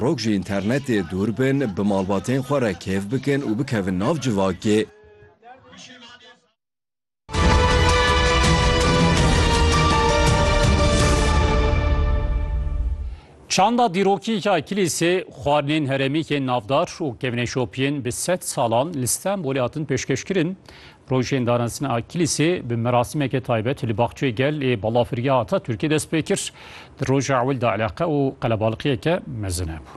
Rok ji înternetê dûr bin, bi malbatên xwe re kêf bikin û bikevin nav civakê. Çanda dîrokî ya kilîsê, xwarinên herêmîkên navdar û kevneşopiyên bi sed salan li Stenbolê hatin pêşkêşkirin. Rojên danazdina Akilîsê bi merasîmeke taybet li Baxçeyê Gel ê Balafirgeha Ataturkê dest pê kir. Di roja ewil de eleqe û qelebalixiyeke mezin hebû.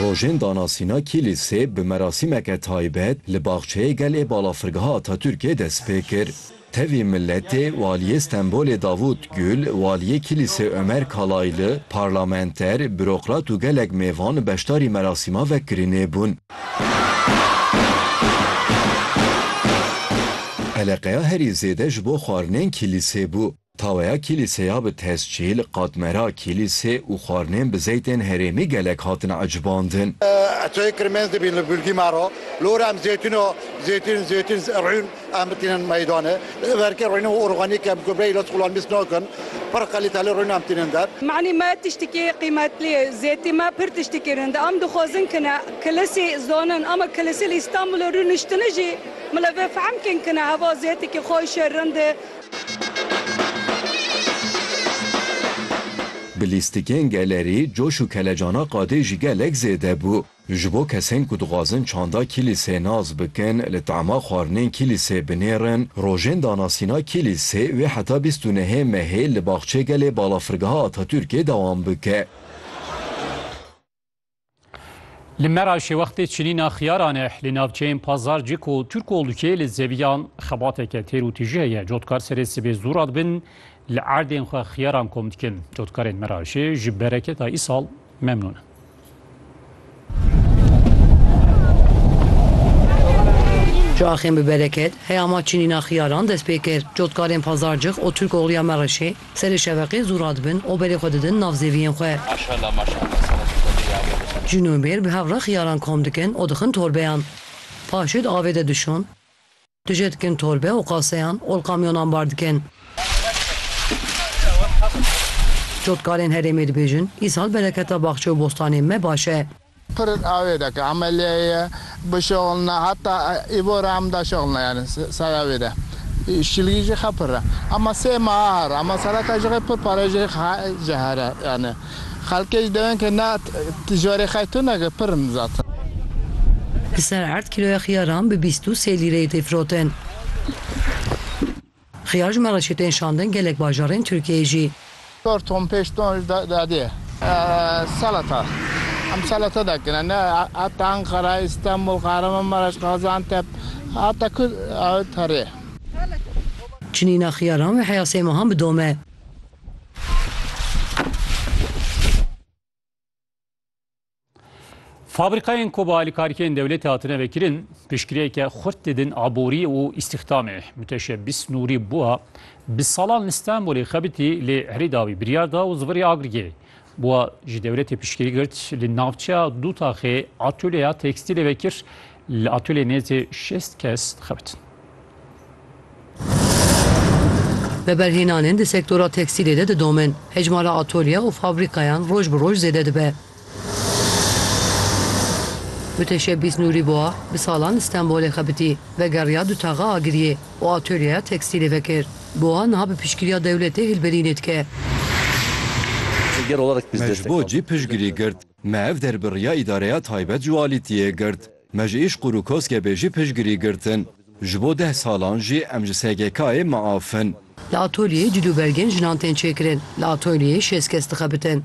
Rojên danasîna Kîlîsê bi merasîmeke taybet li Baxçeyê Gel ê Balafirgeha Ataturkê dest pê kir. Tevî Miletê, Waliyê Stenbolê Davût Gül, Waliyê Kîlîsê Ömer Kalaylı, parlamenter, bürokrat û gelek mêvan beşdarî merasîma vekirinê bûn. Eleqeya herî zêde ji bo xwarinên kîlîsê bû. Taweya kîlîseya bi tescîl, qatmera kîlîsê û xwarinên bi zeytên herêmî gelek hatin ecbandin. Çayê kirmez dibîn li Gulgîmaro. Li Orem zeytun o, zeytun, zeytun, rûn. Em tînin meydanê. Li verkê rûnî û organîk em ku bêyî li skolên mîsk nakin, pir qelîteli rûnî em tînin der. Manî me tiştikî qîmetlî ye. Zêtî me pir tiştikî rûn de. Em dixwazin kine kilisî zanin ama kilisî li Îstanbulê rûniştini jî min li vê fehm kên kine heva zêtikî xweş e, rind e. Bi lîstikên gelerî coş û kelecana qadê jî gelek zêde bû. Ji bo kesên ku dixwazin çanda kîlîsê nas bikin, li tema xwarinên kîlîsê binêrin, rojên danasîna kîlîsê wê heta bîst û nehê mehê li Baxçê Gelê Balafirgeha Atatürkê dewam bike. Li Meraşê wextê çinîna xiyaran e. Li navçeyên Pazarcik û Turkolukê li zeviyan xebateke têr û tîjî heye. Cotkar serê sibê zû radibin li erdên xwe xiyaran kom dikin. Cotkarên Meraşê ji bereketa îsal memnûn in. Çaxên bi bereket, heyama çinîna xiyaran dest pê kir. Cotkarên Pazarcix û Tirkoxluya Mereşê serê şeveqê zû radibin û berê xwe didin nav zêviyên xwe. Jinûbêr bi hev re xiyaran kom dikin û dixin torbeyan. Paşê di avê de dişon. Tu jê dikin torbe û qaseyan ol kamyonan bar dikin. Cotkarên herêmê dibêjin, îsal bereketa baxçe û bostanên me baş e. Pirr avê de ke emeliyê ye bişixilne heta îvo re em daşixilne yanî sera wê de şîlgî jî xe pirr e ema sê meha herr ema sereka jixê pirr pare jixê xe ji herr e yanî. Xelkê ji dewên ke ne tijorê xey tu neke pir in zaten. Li ser erd kîloya xiyaran bi bîst û sê lîreyê tê firotin. Xiyar ji Mereşê tên şandin gelek bajarên Tirkiyeyê jî. Çar ton pênc ton jî dadê. Selata em selata dakine ne heta Enqera, Îstanbul, Kahramanmaraş, Gaziantep heta ku herê. Çinîna xiyaran wê heya sê mehan bidome. Fabrîkayên ku bi alîkarîkên dewletê hatine vekirin, piştgirêke xurt didin aborî û îstîxdamê. Muteşebîs Nûrî bûa bi salan li Stenbolê xebitî lê herî dawî biryar da û zivirê agirgê. Bûa ji dewletê piştgirî girt, li navçeya Dûtaxê atolyeya tekstîlê vekir, li atolyê nêzî şêst kes dixebitin. Veberhênanên di sektora tekstîlê de didomin, hejmara atolye û fabrîkayan roj bi roj zêde dibe. Mutêşebbîs Nûrî Bûa bi salan li Stenbolê xebitî, vegeriya Dûtaxa Agiriyê. û atölyeya tekstîlê vekir. Bi wiha niha bi piştgiriya dewletê hilberînê dike. Me ji bo cî piştgirî girt. Me ev derbirriya îdareya taybet ji walîtiyê girt. Me ji Îşqûr û Koskebê jî piştgirî girtin. Ji bo deh salan jî em ji SGK'ê miaf in. Li atolyeyê cil û belgên jinan tên çêkirin. Li atolyeyê şêst kes dixebitin.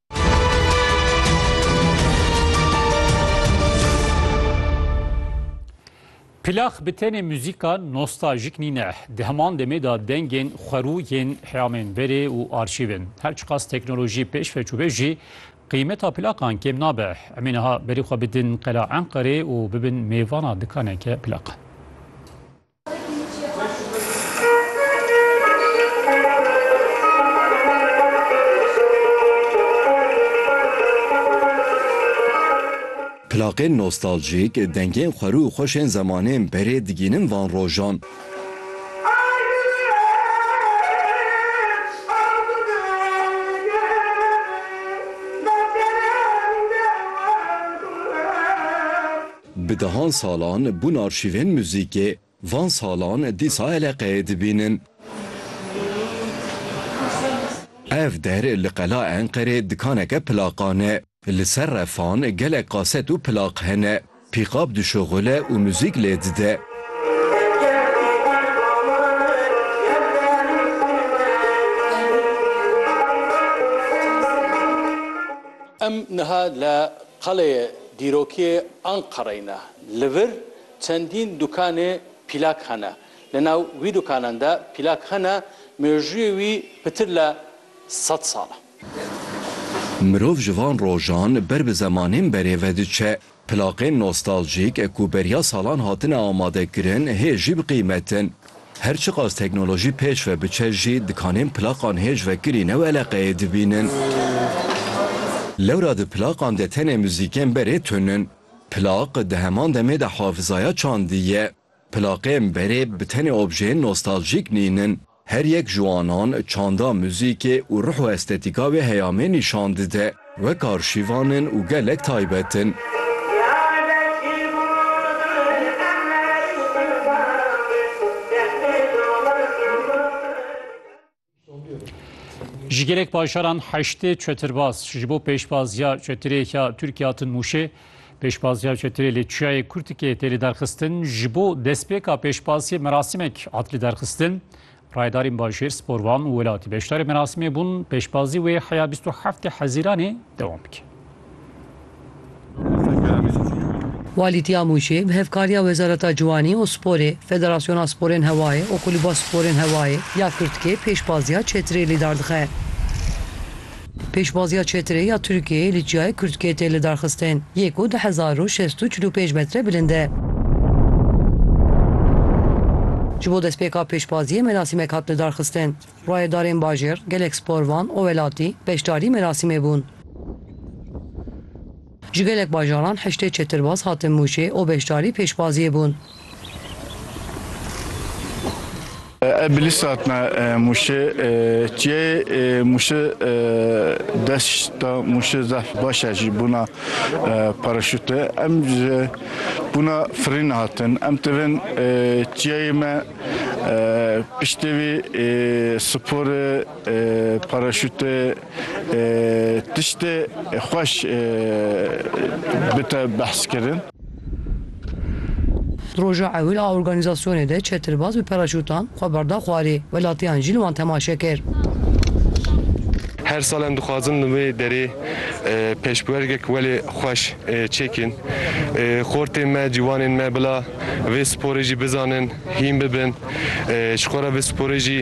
Plax bi tenê muzîka nostaljik nîne. Di heman demê de dengên xwerû yên heyamên berê û arşîv in. Her çiqas teknolojî pêş ve çûbe jî qîmeta plaxan kêm nabe. Em ê niha berî xwe bidin qela Enqerê û bibin mêvana dikaneke plaxan. Plaqên nostaljîk, dengên xwerû û xweş ên zemanên berê digînin van rojan. Bi dehan salan bûn arşîvên muzîkê, van salan dîsa eleqeyê dibînin. Ev der li qela Enqerê dikaneke plaqan e. Li ser refan gelek kaset û plaq hene. Pîqab dişuxule û muzîk lê dide. Em niha li Qaleyê dîrokîyê Anqereyê ne li vir çendîn dukanê pîlak hene. Li nav wî dukanan de pîlak hene mêjûyê wî pitir le sed sal e. Mirov ji van rojan ber bi zemanên berê ve diçe. Pilaqên nostaljîk ku beriya salan hatine amadekirin hê jî biqîmetin. Her çiqas teknolojî pêş ve biçe jî dikanên plaqan hêj vekirî new eleqeyê dibînin. Lewra di plaqan de tenê muzîkên berê tun in. Plaq di heman demê de hafizaya çandî ye. Plaqên berê bi tenê objeyên nostaljîk nînin. Her yek ji wanan çanda, muzîkê û ruh û estetîka wê heyamê nîşan dide. Wek arşîvan in û gelek taybet in. Ji gelek bajaran heştê çetirbaz ji bo pêşbaziya çetirê ya Tirkiye hatin Mûşê. Pêşbaziya çetirê li Çiyayê Kurtikê tê lidarxistin. Ji bo destpêka pêşbaziyê merasîmek hat lidarxistin. Rayedarên bajêr, sporvan û welatî beşdarê merasimê bûn, pêşbazî wê heya bîst û heftê Hezîranê dewam bike. Walî Tîyamûcê bi hevkariya Wezareta Ciwanî û Sporê, Federasyona Sporên Hewayê û Kulîba Sporên Hewayê ya Kurtkê pêşbaziya çetirê lîdar dixe. Pêşbaziya çetre ya Tirkiyeyê li Çiyayê Kurtkê tê lidarxistin yê ku du hezar û şêst û çil û pênc metre bilind e. Ji bo destpêka pêşbaziyê merasîmek hat lidarxistin. Rayedarên bajêr, gelek sporvan û welatî beşdarî merasîmê bûn. Ji gelek bajaran heştê çetirbaz hatin Mûşê û beşdarî pêşbaziyê bûn. Ev bi lîst hatine Mûşê. Çiyayê Mûşê deşta Mûşê zehf baş e jî bûna paraşûtê. Em ji bûna firîn hatin. Em tevên çiyayê me piştê vî sporê. Paraşût tiştê xweş bite behskirin. Di roja ewil a organîzasyonê de çetirbaz bi paraşûtan xwe berda xwarê, welatiyan jî li wan temaşe kir. Her sal em dixwazin li wê derê pêşbwergek welê xweş çêkîn. Xortên me, cîwanên me bila vê sporê jî bizanin, hîn bibin. Ji xwe re vê sporê jî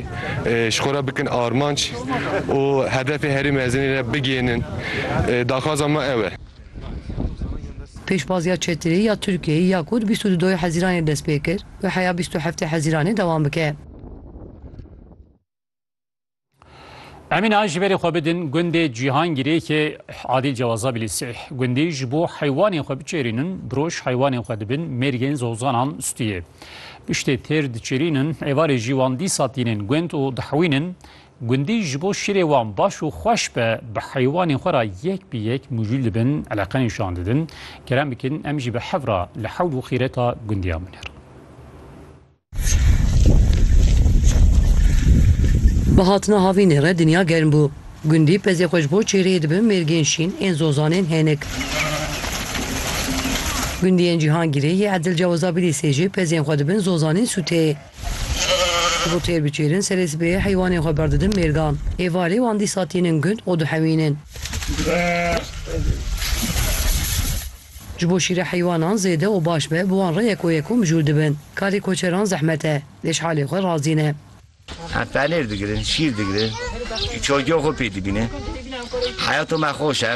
ji xwe re bikin armanc û hedefê herî mezinê re bigihînin. Daxwaza me ew e. Pêşbaziya Çetirê ya Tirkiyeyê ya ku di bîst û du doyê Hezîranê dest pê kir, bi heya bîst û heftê Hezîranê dewam bike. Emîn a ji berê xwe bidin gundê Cîhangîrê ki Adîl Cewaza bilî sih. Gundî ji bo heywanên xwe biçêrînin, bi roj heywanên xwe dibin mêrgên zozanan stûyê. Piştê têr diçêrînin, êvarê jî wan dîsa tînin gund û dihewînin. Gundî ji bo şîrê wan baş û xweş be, bi heywanên xwe ra yek bi yek mijûl dibin, eleqe nîşan didin. Kerem bikin em jî bi hev ra li hewl û xîreta gundiyan binêrin. Bi hatina havînê re dinya germ bû. Gundî pezê xwe ji bo çêreyê dibin mêrgên şîn ên zozanên hênik. Gundiyên Cîhangîrê yê Edil Cewizabîlîsê jî pezên xwe dibin zozanên sûteyê. Ji bo têr biçêrin serê sibehê heywanên xwe berdidin mêrgan. Êvarê wan dîsa tînin gund û dihewînin. Ji bo şîra heywanan zêde û baş be, bi wan re yek û yek û mijûl dibin. Karê koçeran zehmet e. Lê ji halê xwe razî ne. Em penêr digirin, şîr digirin, çocuya xwe pê dibînin. Heyata me xweş e.